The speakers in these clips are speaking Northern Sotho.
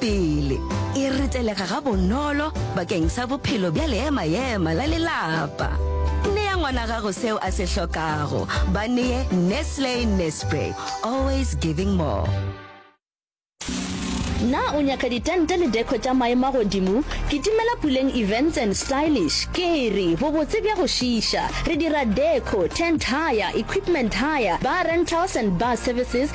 pele e retelega gabonolo bakeng sa bophelo bja leema-ema la lelapa. Nea ngwana gago seo a se hlokago. Ba nee Nestle Nespray, always giving more. Na o nyaka ditente le deco tša maemo a godimo? Kitimela Puleng Events and Stylish. Kere, bobotse bja go šiiša. Re dira deco, tent hire, equipment hire, bar rentals and bar services,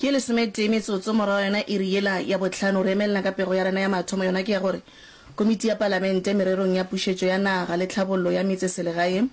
Ke lesometee metsotso morago ga yona iri yela ya bohlano, re emelela ka pego ya rena ya mathomo, yona ke ya gore Komiti ya Palamente mererong ya Pušetšo ya Naga le Tlhabollo ya Metseselegae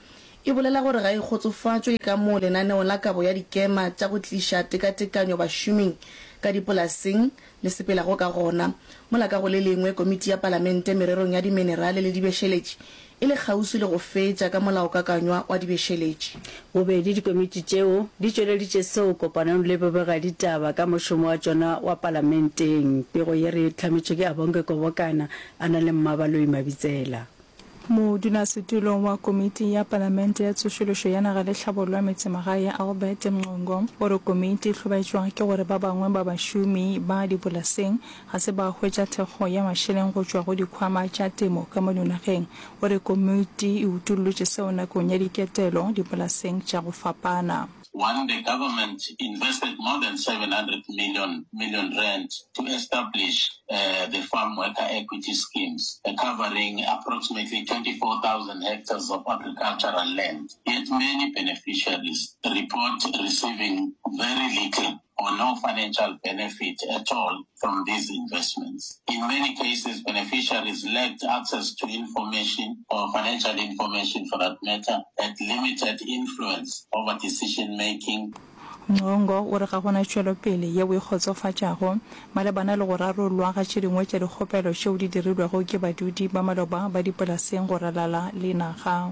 e bolela gore ga e kgotsofatšwe ka moo lenaneo la kabo ya dikema tša go tliša tekatekanyo bašoming ka dipolaseng le sepelago ka gona, mola ka go le lengwe Komiti ya Palamente mererong ya Diminerale le Dibešeletši e le kgauswi le go fetša ka molaokakanywa wa dibešeletši. Bobedi dikomiti tšeo di tšweleditše seo kopanong le bobegaditaba ka mošomo wa tšona wa Palamenteng pego ye re hlametšwe ke Abonge Kobokana a na le Mmabaloi Mabitsela. Modulasetulong wa Komiti ya Palamente ya Tsošološo ya Naga le Hlabollo Metsemagae Albert Mncungo o re komiti e hlobaetšwa ke gore ba bangwe ba bašomi ba dipolaseng ga se ba hwetša thekgo ya mašeleng go tšwa go dikhwama tša temo ka mo dinageng. O re komiti e utollotše seo nakong ya diketelo dipolaseng tša go fapana. One the government invested more than 700 million million rand to establish the farm worker equity schemes covering approximately 24,000 hectares of agricultural land yet many beneficiaries report receiving very little. or no financial benefit at all from these investments. In many cases, beneficiaries lacked access to information or financial information for that matter, had limited influence over decision making, Mwongo o re ga go na tšwelopele yeo e kgotsofatšago malebana le go rarollwa ga tše dingwe tša dikgopelo tšeo di dirilwego ke badudi ba maloba ba dipolaseng go ralala le naga.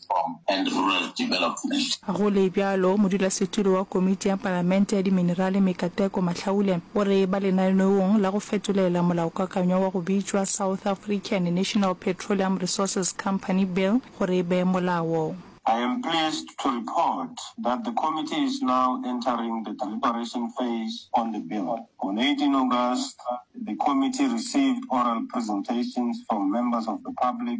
Go le bjalo, modulasetulo wa Komiti ya Palamente ya Diminerale Mikateko Mahlaule o re ba lenaneong la go fetolela molaokakanywa wa go bitšwa South African National Petroleum Resources Company Bill gore e be molao. I am pleased to report that the committee is now entering the deliberation phase on the bill. On 18 August, the committee received oral presentations from members of the public,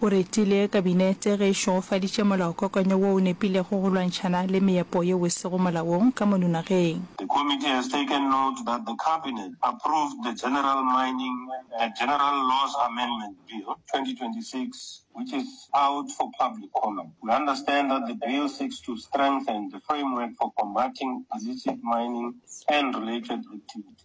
O retile Kabinete ge e šegofaditše molaokakanyo wo o nepilego go lwantšhana le meepo yeo e sego molaong ka mono nageng. The Committee has taken note that the Cabinet approved the General Mining and General Laws Amendment Bill, 2026, which is out for public comment. We understand that the bill seeks to strengthen the framework for combating illicit mining and related activities.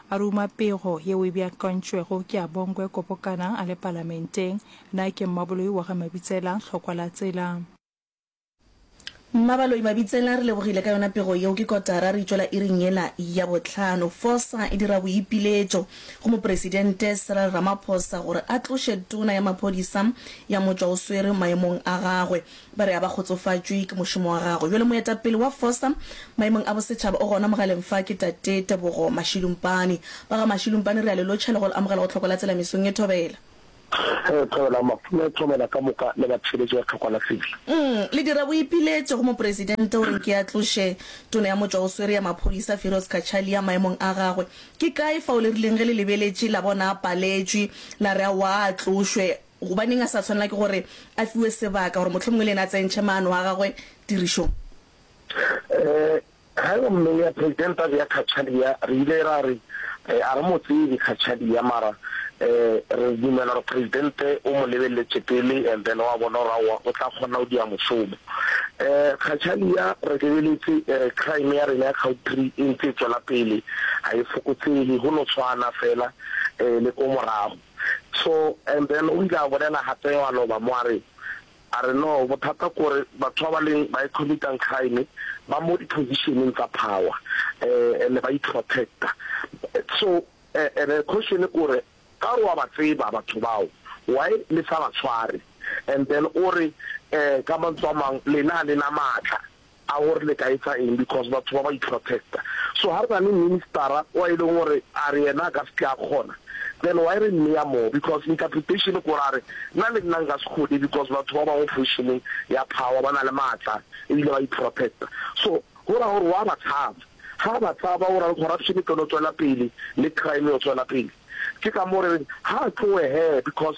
A ruma pego yeo e beakantšwego ke a Bongwe Kopokanang a le Palamenteng. Na ke Mmaboloi wa ga Mabitsela hlokwa la tsela? Mmabaloi Mabitsela, re lebogile ka yona pego yeo. Ke kotara re tšwela iring yela ya bohlano. Forca e dira boipiletšo go Mopresidente Cyril Ramaphosa gore a tloše Tona ya Maphodisa ya Motšwaoswere maemong a gagwe. Ba re a ba kgotsofatšwe ke mošomo wa gagwe bjalo moetapele wa Fosta maemong a bosetšhaba. O gona mogaleng fa ke Tate Tebogo Mashilumpane. Ba ga Mashilumpane re a le lotšha le go le amogela go Tlhokwala Tselamisong e Thobela. Ge Thobela, Mafula e Thobela ka moka le batheeletši ba Tlhokwala Civil. Ii, le dira boipiletšo go Mopresidente gore nke a tloše Tona ya Motšwa o Swere ya Maphodisa Firoz Cachalia maemong a gagwe. Ke kae fao le rileng ge le lebeletše la bona a paletšwe la re aowa a tlošwe? Gobaneng a sa swanela ke gore a fiwe sebaka gore mohlomongwe le yena a tsentšhe maano a gagwe tirišong? Ee, ge gomme ya President a bea Cachalia, re ile ra re, Ee, a re mo tsebe Cachalia, mara ee, re dumela gore President o mo lebeleletše pele and then wa bona gore aowa o tla kgona go dia mošomo. Ee, Cachalia re lebeletse ee, crime ya rena ya Cowtree e ntse e tšwela pele, ga e fokotsege, go no tshwana fela ee, le ko morago. So and then o ile a bolela gape a loba mo a re, a re no bothata kore batho ba ba leng ba e committang crime ba mo di positioneng tsa power um and ba iprotecta so and then question kore ka gore wa ba tseba batho bao why le sa ba tshware and then o re um ka mantswe a mang lena ga lena maatla A gore le ka etsa eng because batho ba ba iprotecta. So ha re na le ministera wa e leng gore a re yena a ka se tle a kgona then why re mmeya moo because interpretation kore a re nna le nna nka se kgone because batho ba bangwe positioneng ya power ba na le maatla ebile ba iprotecta. So go raya gore wa ba tshaba. Ha ba tshaba go raya gore corruption e tlilo tswela pele le crime e yo tswela pele. Ke ka moo re reng ha a tlowe hee because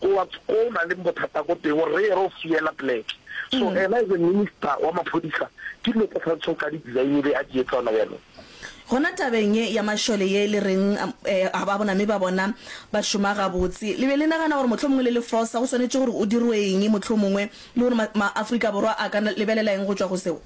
Towards ko o na leng bothata ko teng o reye re o fiela pleke. So ena as a minister wa maphodisa ke dilo tse a tshwanetseng ka di design be a di etsa ona byanong. Gona tabeng ye ya mašole ye le reng ga ba bona me ba bona ba šoma gabotse, le be le nagana gore mohlomongwe le le fosa go swanetše gore o dirwe eng mohlomongwe le gore ma ma Afrika Borwa a ka lebelela eng go tšwa go seo?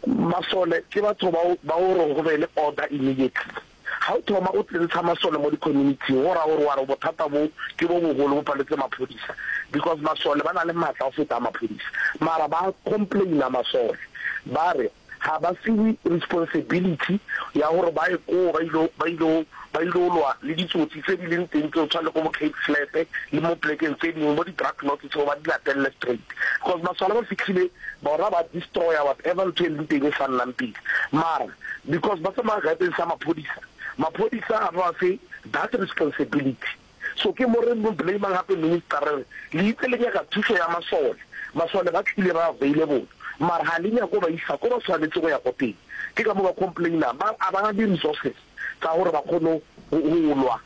Masole ke batho bao ba o reng go be le order immediately. Ga o thoma o tsentsha masole mo di-community-ing go raya gore wa re bothata bo ke bo bogolo bo paletse maphodisa because masole ba na le maatla go feta a maphodisa. Mara ba complain-a masole ba re ga ba fiwe responsibility ya gore ba ye koo ba ile ba ile ba ile lwa le ditsotsi tse di leng teng tseo tshwana le ko bo Cape Flats le mo plekeng tse dingwe bo di-drug lords tseo ba di latelele straight because masole ba fitlhile bona ba destroyer whatever ntho e leng teng e sa nnang pele mara because ba tsamaya garden sa maphodisa, maphodisa ga ba fe that responsibility. So ke mo re mo blamang gape minister re re le itse le nyaka thušo ya masole, masole ba tlile ba available mara ga le nyako ba isa ko ba tshwanetse go ya ko teng ke ka mo ba complainang ba a ba ga di resources tsa gore ba kgone go lwa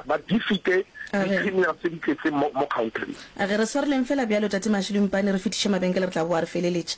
ba defeate di-criminal tse di tletseng mo country. A ge re swareleng fela bjalo tate Mashilo Mpane re fetiše mabenkele re tla boa re feleletše.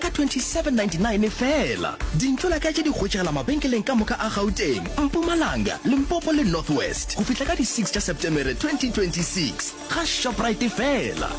ka 2799 feela. Dintlo la ka tše di hwetšegela mabenkeleng ka moka a Gauteng, Mpumalanga, Limpopo le North West go fihla ka di 6 tša Setemere 2026. Ga Shoprite feela.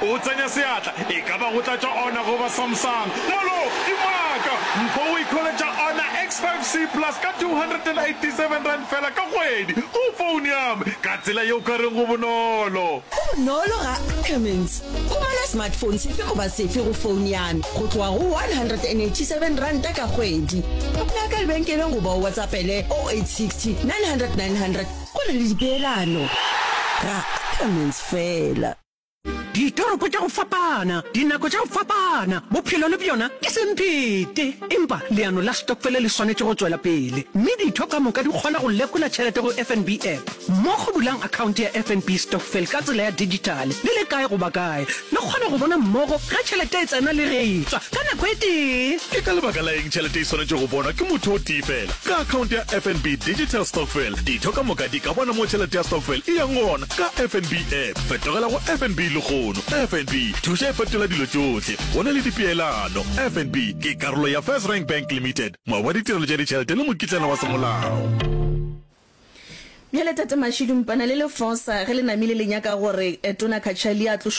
O tsenya seatla, e ka ba go tlatša ona goba Samsung. Molo! Ke maaka! Mpho o ikholetša ona X5 C Plus ka R287 feela ka kgwedi go foune ya me, ka tsela yeo ka reng go bonolo. Go bonolo ga Ackermans. O bala smartphone sefe goba sefe go founo ya me go tloga go R187 ka kgwedi. Mpea ka lebenkeleng goba o WhatsAppele 0860 900 900 go na le dipeelano. Ra Ackermans fela. Ditoropo tša go fapana, dinako tša go fapana, bophelo le bjona ke semphete. Empa leano la stokfele le swanetše go tšwela pele, mme ditho ka moka di kgona go lekola tšhelete go FNB app. Mmogo bulang akhaonte ya FNB Stokvel ka tsela ya dijithale le le kae goba kae, le kgone go bona mmogo ge tšhelete e tsena le ge e tšwa ka nako e tee. Ke ka lebaka la eng tšhelete e swanetše go bonwa ke motho o tee feela? Ka akhaonte ya FNB Digital Stokvel, ditho ka moka di ka bona mo tšhelete ya stokvel e yang gona ka FNB App. Fetogela go FNB lehono. FNB, thuša e fetola dilo tšohle. Go na le dipeelano. FNB ke karolo ya First Rank Bank Limited, moabi wa ditirelo tša ditšhelete le mokitlana wa semolao. Bjale Tate Mashidu, Mpana le Lefosa ge le namile le nyaka gore Tona Cachalia a tlošwe